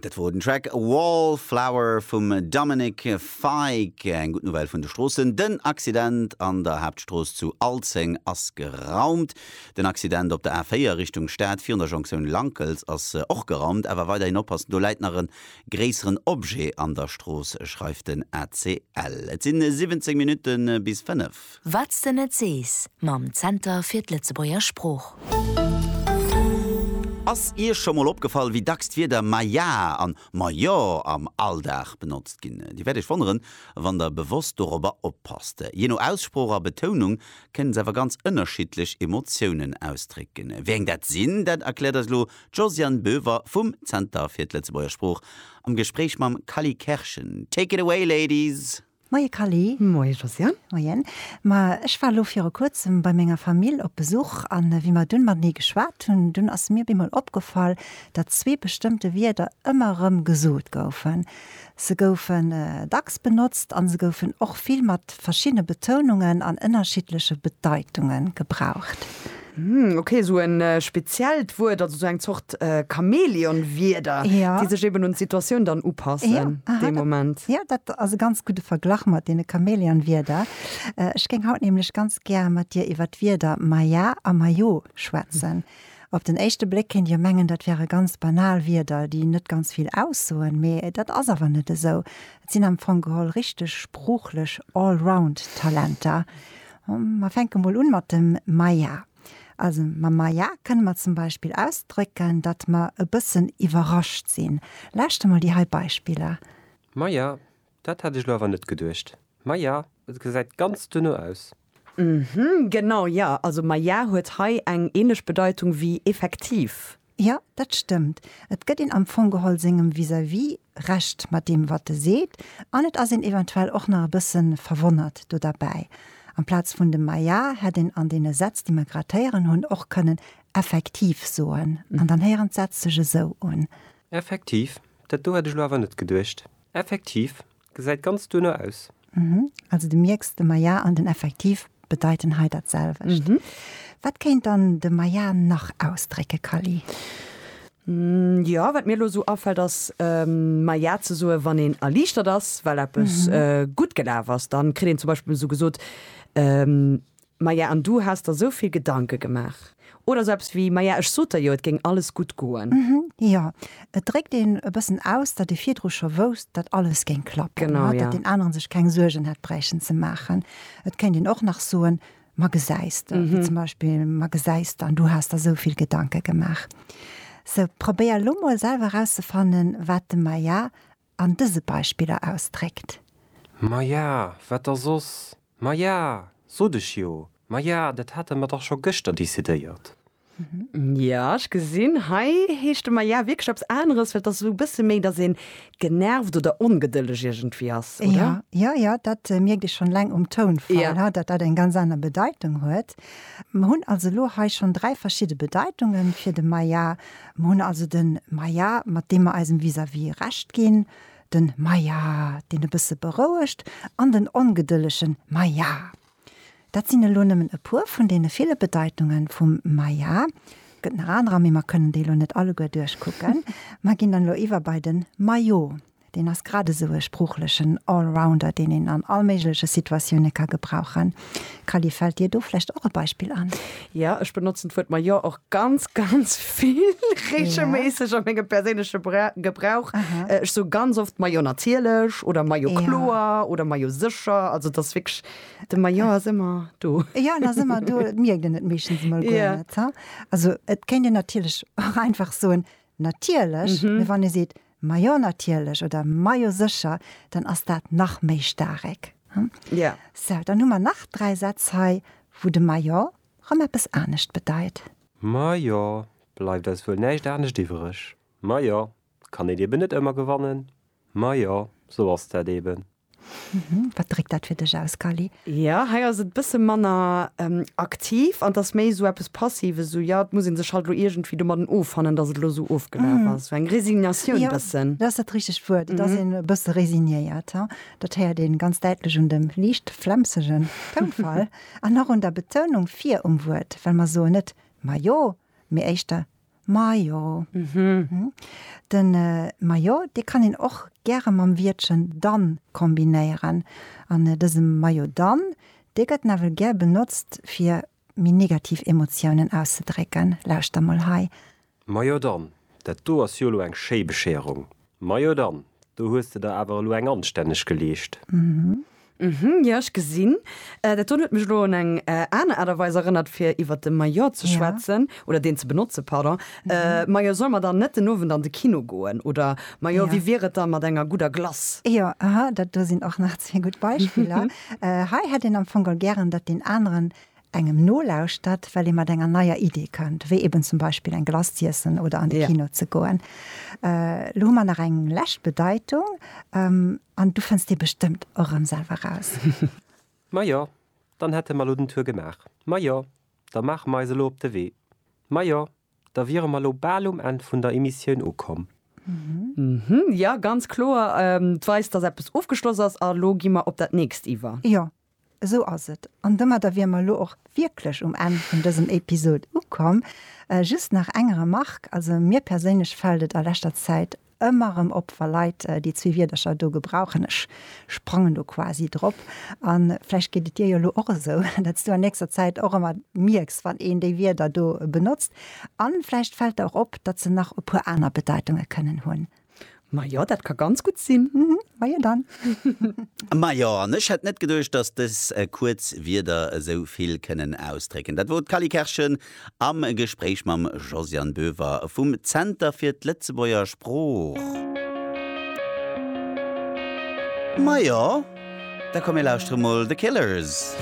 Dat wor den Track Wallflower vum Dominic Fike. Eng gutt Nouvelle vun de Stroossen, den Accident an der Haaptstrooss zu Alzeng ass geraumt. Den Accident op der A4 Richtung Stad virun der Jonktioun Lankels ass och geraumt, awer weiderhin oppassen, do läit nach e gréisseren Objet an der Strooss, schreift den ACL. Et si 17 Minutte bis 5. Wat's de net sees mam Zenter fir d'Lëtzebuerger Sprooch. Ass Iech scho mol opgefall, wéi dacks d'Wierder ma ja an ma jo am Alldag benotzt ginn? Dir wäert Iech wonneren, wann Der bewosst dorobber oppasst. Jee no Aussprooch a Betounung kënnen se awer ganz ënnerschiddlech Emotiounen ausdrécken. Wéi eng dat sinn, dat erkläert eis elo d'Josiane Boever vum Zenter fir d'Lëtzebuerger Sprooch am Gespréich mam Kally Kerschen. Take it away, Ladies! Moie Kally. Moie Josiane. Moien. Ma ech war elo viru kuerzem bei menger Famill op Besuch an wéi mer dunn matenee geschwat hunn, dunn ass mir op eemol opgefall, datt zwee bestëmmte Wierder ëmmer erëm gesot goufen. Se goufen dacks benotzt an se goufen och vill mat verschiddene Betounungen an ënnerschiddleche Bedeitunge gebraucht. Hm, ok, esou en speziellt Wuert, also esou eng Zort Chamäleon-Wierder, déi sech eben un d'Situatioun dann upassen dee Moment. Jo, dat ass e ganz gudde Verglach mat deene Chamäleon-Wierder. Ech géing haut nämlech ganz gär mat dir iwwer d'Wierder maja a majo schwätzen. Op den éischte Bléck kéint jo mengen, dat wäre ganz banal Wierder, déi net ganz vill aussoen, mee dat ass awer net esou. Et sinn am Fong geholl richteg sproochlech Allround-Talenter. Mer fänke mol un mat dem Maja. Also mam Maja kënne mer zum Beispill ausdrécken, datt mer e bëssen iwwerrascht sinn. Lauschter mol déi hei Beispiller. Maja, dat hat ech elo awer net geduecht. Maja, et gesäit ganz duerno aus. Hm, genau, jo. Also Maja huet hei eng ähnlech Bedeitung wéi effektiv. Jo, dat stëmmt. Et gëtt een am Fong geholl sengem Vis-à-vis Recht mat deem, wat e seet, an et ass een eventuell och nach e bësse verwonnert do derbäi. Amplaz vun dem Ma ja hätt een an deene Sätz, déi mer grad héieren hunn, och kënnen effektiv soen. An dann héieren d'Sätz sech esou un. Effektiv? Dat do hätt ech elo awer net geduecht. Effektiv? Gesäit ganz duerno aus. Mhm. Also de mierks, de Maillard an den Effektiv bedeiten hei dat selwecht. Mhm. Wat kéint dann de Maillard nach ausdrécke, Kally? Jo, wat mir elo esou afält ass Maillard ze soe wann een erliichtert ass, well eppes gutt gelaf ass. Dann kritt een zum Beispill esou gesot, Maja, an du has der sou vill Gedanke gemaach? Oder sou eppes wéi, Maja, ech sot der jo, et géing alles gutt goen. Mhm, jo. Et dréckt een e bëssen aus, datt ee virdru scho wousst, datt alles géing klappen. Genau, jo. Datt deen aneren sech keng Suergen hätt bräichen ze maachen. Et kéint een och nach soen, Ma gesäis de, wéi zum Beispill, Ma gesäis de, an du has der sou vill Gedanke gemaach. Sou, probéier elo mol selwer erauszefannen, wat dem Maja an dëse Beispiller ausdréckt. Ma ja, wat da soss? Ma ja, sot ech jo, ma ja, dat hate mer dach scho gëschter decidéiert. Ja, ech gesinn, hei heescht de ma ja wierklech eppes aneres, well et ass esou e bësse méi, datt ee genervt oder ongedëlleg iergendwéi ass, oder? Jo, jo, dat mierkt ee schonn eleng um Tounfall, datt dat eng ganz aner Bedeitung huet. Mer hunn also elo hei schonn dräi verschidde Bedeitungen fir de ma ja, Mer hunn also den Maja, mat deem mer eisem Vis-à-vis Recht ginn, den Maja, deen e bësse berouegt, an den ongedëllegen Maja. Dat sinn elo nëmmen e puer vun deene ville Bedeitunge vum Maja. Et gëtt nach anerer, mee mer kënnen déi elo net alleguer duerchkucken. Mer ginn dann elo iwwer bei den Majo. Deen ass grad esou e sproochlechen Allrounder, deen een an all méigleche Situatioune ka gebrauchen. Kally, fält dir do vläicht och e Beispill an? Jo, ech benotzen d'Wuert ma jo och ganz, ganz vill, reegelméisseg a mengem perséinleche Gebrauch. Ech soe ganz oft ma jo natierlech oder ma jo kloer oder ma jo sécher. Also et ass wierklech, de ma jo ass ëmmer do. Jo, en ass ëmmer do, et mierkt een et meeschtens emol guer net. Also et kéint een natierlech och einfach soen natierlech, mee wann ee seet Majo natierlech oder Majo sécher, dann ass dat nach méi staarek. Ja. Sou, dann hu mer nach dräi Sätz hei, wou de Majo rëm eppes anescht bedeit. Majo, bleift eis wuel näischt anescht iwwereg. Majo, kann een eben net ëmmer gewannen. Majo, sou ass dat eben. Mhm. Wat dréckt dat fir dech aus, Cally? Ja, hei ass et bësse manner aktiv an et ass méi esou eppes Passives, esou, ja, et muss ee sech halt elo iergendwéi domadden offannen, datt et elo esou ofgelaf ass. Esou eng Resignatioun bëssen. Jo, dat ass dat richtegt Wuert. Et ass een e bësse resignéiert. Dat héiert een ganz däitlech un dem liicht flemsegen Tounfall an och un der Betounung vir um Wuert, well mer soen net majo, mee éischter Majo. Mhm. Den Majo, dee kann een och gäre mam Wiertchen dann kombinéieren. An dëse Majo dann, dee gëtt nawell gär benotzt, fir méi negativ Emotiounen auszedrécken. Lauschter mol hei. Majo dann, dat do ass jo elo eng schéi Bescherung. Majo dann, do hues de der awer elo eng anstänneg geleescht. Uhmm, jo ech gesinn dat. Dun huet mech elo un eng aner Aart a Weis erënnert fir iwwert de Maillot ze schwätzen, oder deen ze benotze, pardon. Majo, solle mer dann net den Owend an de Kino goen? Oder majo, wéi wier et da mat enger gudder Glace? Jo, aha, dat do sinn och nach zwee gutt Beispiller. Hei hätt een am Fong gären, datt deen aneren engem nolauschtert, well ee mat enger neier Idee kënnt, wéi eben zum Beispill eng Glace z'iessen oder an de Kino ze goen. Elo hu mer nach eng lescht Bedeitung an du fënns déi bestëmmt och erëm selwer raus. Majo, dann hätte mer elo den Tour gemaach. Majo, da maache mer eis elo op de Wee. Majo, da wiere mer elo bal um Enn vun der Emissioun ukomm. Jo, ganz kloer. D'weist, dass eppes ofgeschloss ass a lo gi mer op dat nächst iwwer. Jo, Esou ass et. An domadder wier mer elo och wierklech um Enn vun dësem Episod ukomm. Just nach eng Remarque, also mir perséinlech fält et a leschter Zäit ëmmer erëm op, wa Leit déi zwee Wierdercher do gebrauchen, ech sprangen do quasi drop, a vläicht geet et dir jo elo och esou, datt s du an nächster Zäit och ëmmer mierks, wann een déi Wierder do benotzt. A vläicht fält der och op, datt se nach e puer aner Bedeitunge kënnen hunn. Majo, dat ka ganz gutt sinn. Majo dann. Majo, an ech hätt net geduecht, dass dës kuerz Wierder esou vill kënnen ausdrécken. Dat wor d'Cally Kerschen am Gespréich mam Josiane Boever vum Zenter fir d'Lëtzebuerger Sprooch. Majo, da komm mir lauschtere mol The Killers.